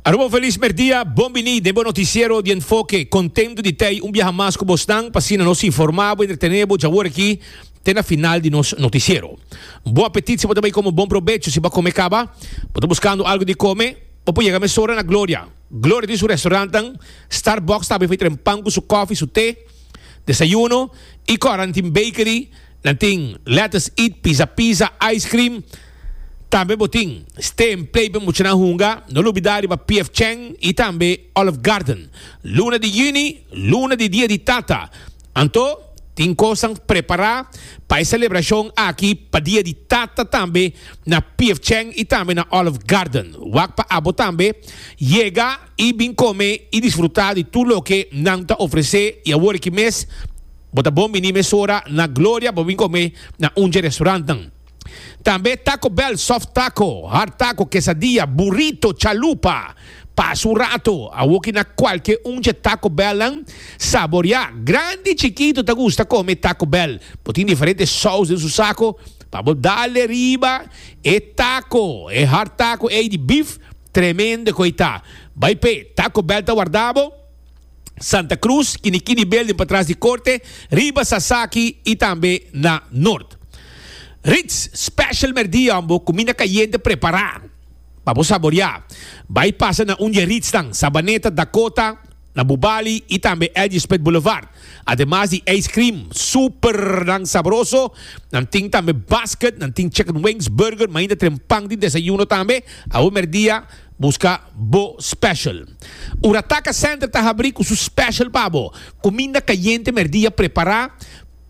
Aruba un felis merdia, bon bini den bo noticiero di Enfoke. Contento di tei un biaha mas cu bosnan, p'asina nos informa bo y entretene bo dj'awor aki te na final di nos noticiero. Bon apetit si bo ta bay come, bon probecho si bo a come caba. Bo ta buscando algo di come? Bo por yega mesora na Gloria. Gloria tin su restaurantnan, Starbucks ta habi fey tren pan cu su coffee, su te, desayuno y cu a hora nan tin bakery, nan tin let us eat, pizza pizza, ice cream. Tambe bo tin Steen Pleiben muchanan hunga, no lo bida riba PF Cheng y tambe Olive Garden. Luna di Juni, luna di Dia di Tata. Anto tin cosnan prepara pa e celebracion aki pa Dia di Tata tambe na PF Cheng y tambe na Olive Garden. Wak pa abo tambe yega y bin come y disfruta di tur loke nan ta ofrece y awor aki mes bo ta bon bini mesora na Gloria pa bo bin come na undje restaurantnan. Tambe e Taco Bell, soft taco, hard taco, quesadilla, burrito, chalupa. Pasa un rato, awoki na kualke un dje Taco Bellnan saboriá. Grandi i chikitu ta gusta kome e Taco Bell. Bo tin diferente sous den su sako pa bo dale riba e taco. E hard taco ei di bif, tremendo ku ei ta. Bai p'e, Taco Bell ta warda bo. Santa Cruz, Kinikini Building patras di Corte, riba Sasaki y tambe na Noord. Ritz Special Merdiambo Cuminda Cayente prepara pa bo saboria. Bay pasa na un di e Ritznan, Sabaneta, Dakota, na Bubali y tambe Edge Spit Boulevard. Ademas di ice cream supernan sabroso, nan tin tambe basket, nan tin chicken wings, burger, mainda tren pan di desayuno tambe. Awe merdia. Busca bo special. Ora Taca Center ta habri cu su special pa bo. Cuminda cayente merdia prepara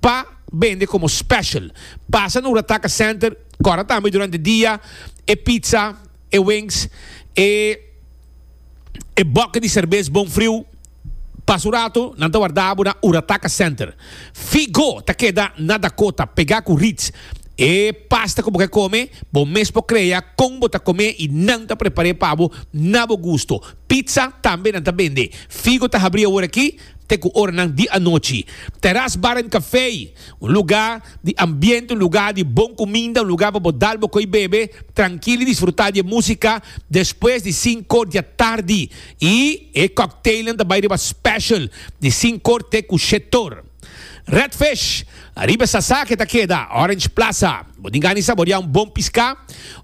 pa bende como special. Pasa na Ora Taca Center cora tambe durante dia e pizza, e wings, e e bucket di cerbes bon friu. Pas un ratu nan ta warda bo na Urataka Center. Figo ta keda na Dakota, pegá ku Ritz. E pasta ku bo ke kome, bo mes por krea kon bo ta kom'é i nan ta prepar'é pa bo na bo gusto. Pizza tambe nan ta bende. Figo ta habrí awor aki te ku oranan di anochi. Terras Bar and Café, un lugá di ambiente, un lugá di bon kuminda, un lugá pa bo dal bo koi bebe trankil i disfrutá di e músika despues di sinko diatardi. Y e cocktailnan ta bay riba special di sincor te cu shetor. Red Fish, ariba e sasa ke ta keda Orange Plaza. Bo tin gani saboria un bon pisca?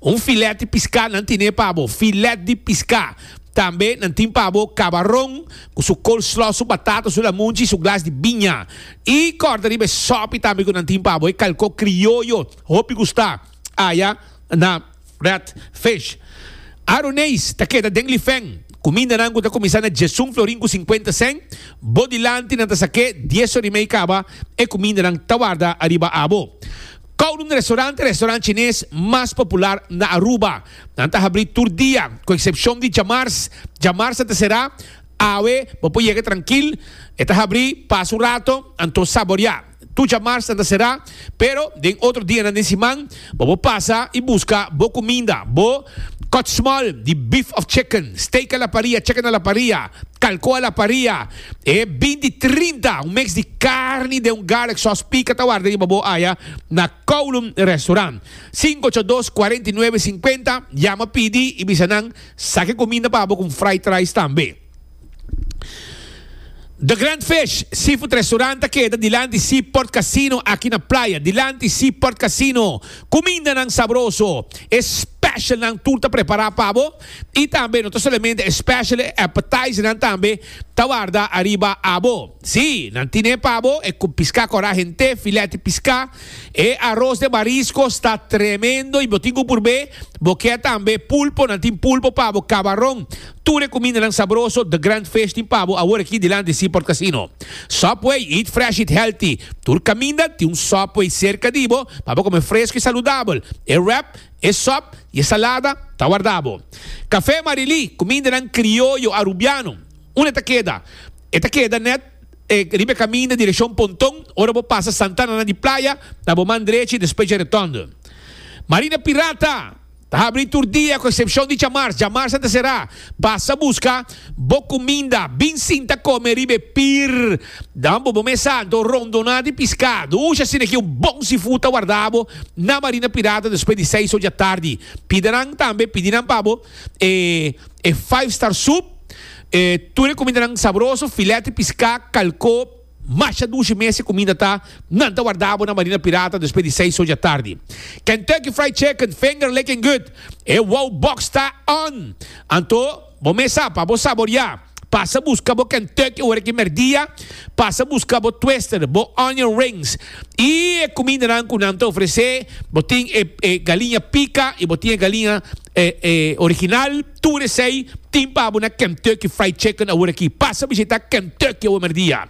Un filet di pisca nan tine pa bo, filet di pisca. Tambe nan tin pa bo cabaron cu su coleslaw, su batata, su lamunchi, su glas di biña. Y corda riba e sopi tambe cu nan tin pa bo e calco crioyo, hopi gusta aya na. Rat Fish. Aroneis ta keda den lifen. Kumindanan ku ta kuminsá na dies un florin ku sinkuenta sen, bo dilanti nan ta sak'é dies or i mei kaba e kumindanan ta warda ariba abo. Kowloon Restaurant e restaurant chines mas popular na Aruba. Nan ta habrí tur dia, ku eksepshon di djamars. Djamars nan ta será. Awe bo por yega trankil. E ta habrí pas un rato, anto saboriá. Tur djamarsan ta será, pero den otro dianan den siman bo por pasa i buska bo cuminda, bo kòtsmòl di beef of chicken, steak a la paria, chicken a la paria, kalko a la paria, e binti trinta, un mix di carni den un garlic sauce pica ta warda riba bo aya na Kowloon Restaurant. Sinku ocho dos, kuarenta i nuebe, sinkuenta, yama pidi i bisa nan sa ke cuminda pa bo con fried rice tambe. The Grand Fish Seafood Restaurant ta keda dilanti Seaport Casino aki na Playa. Dilanti Seaport Casino, kumindanan sabroso, e specialnan tur ta prepara pa bo. I tambe no ta solamente e special, e appetizernan tambe ta warda ariba abo. Sí, nan tine pa bo e piská kora hent'é, filet di piská, e aros den mariskos ta tremendo i bo tin ku purb'é. Bo kier tambe pulpo, nan tin pulpo pa bo, kabaron, Tur e kumindanan sabroso The Grand Fish tin pa bo awor aki dilanti di Seaport Casino. Subway, eat fresh, eat healthy! Tur kaminda tin un Subway serka di bo pa bo kome fresku i saludabel. E wrap, e sop i e salada ta warda bo. Café Marilí, kumindanan krioyo Arubiano. Unda e ta keda? E ta keda nèt riba e kaminda direkshon Ponton ora bo pasa Santananan di Playa na bo man drechi despues dje Retondo. Marina Pirata! Ta habri tur dia cu excepcion di djamars. Djamars a ta cera. Basa busca bo cuminda. Bin sinta come riba e pir. Dan bobo mesa anto rondona di piscado. Uxa asina aki un bon seafood ta warda bo na Marina Pirata despues di seis ocho di atardi. Pida nan tambe, pidi nan pa bo e e five star soup, e tur e cumindanan sabroso, filet di pisca, calcó, Masha dushi mes e kuminda ta, nan ta warda bo na Marina Pirata despues di seis oja tardi. Kentucky Fried Chicken, finger licking good, e wow box ta on! Anto, bo mes a pa bo saboria. Pasa buska bo Kentucky ora ki merdia, pasa buska bo twister, bo onion rings y e kumindanan ku nan ta ofrece. Bo tin e galiña pika y bo tin e galiña original. Tur esei tin pa bo na Kentucky Fried Chicken aworaki. Pasa bishita Kentucky awe merdia.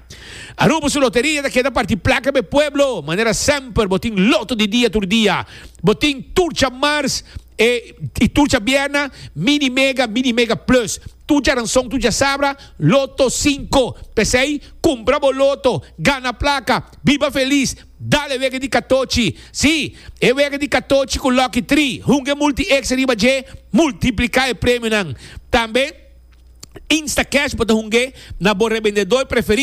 Aruba su loteria ta keda parti plaka pa e pueblo. Manera semper bo tin loto di dia tur dia. Bo tin tur djamars i tur djabièrna, Mini Mega, Mini Mega Plus. Tur djaranson, tur djasabra, Loto Sinku. P'esei, kumpra bo loto, gana plaka, biba felis! Dale wega di katochi. Sí, e wega di katochi ku lòki tri. Hunga e multi ekstra riba dje. Multipliká e premionan. Tambe Instacash bo ta hunga na bo rebendedó preferí.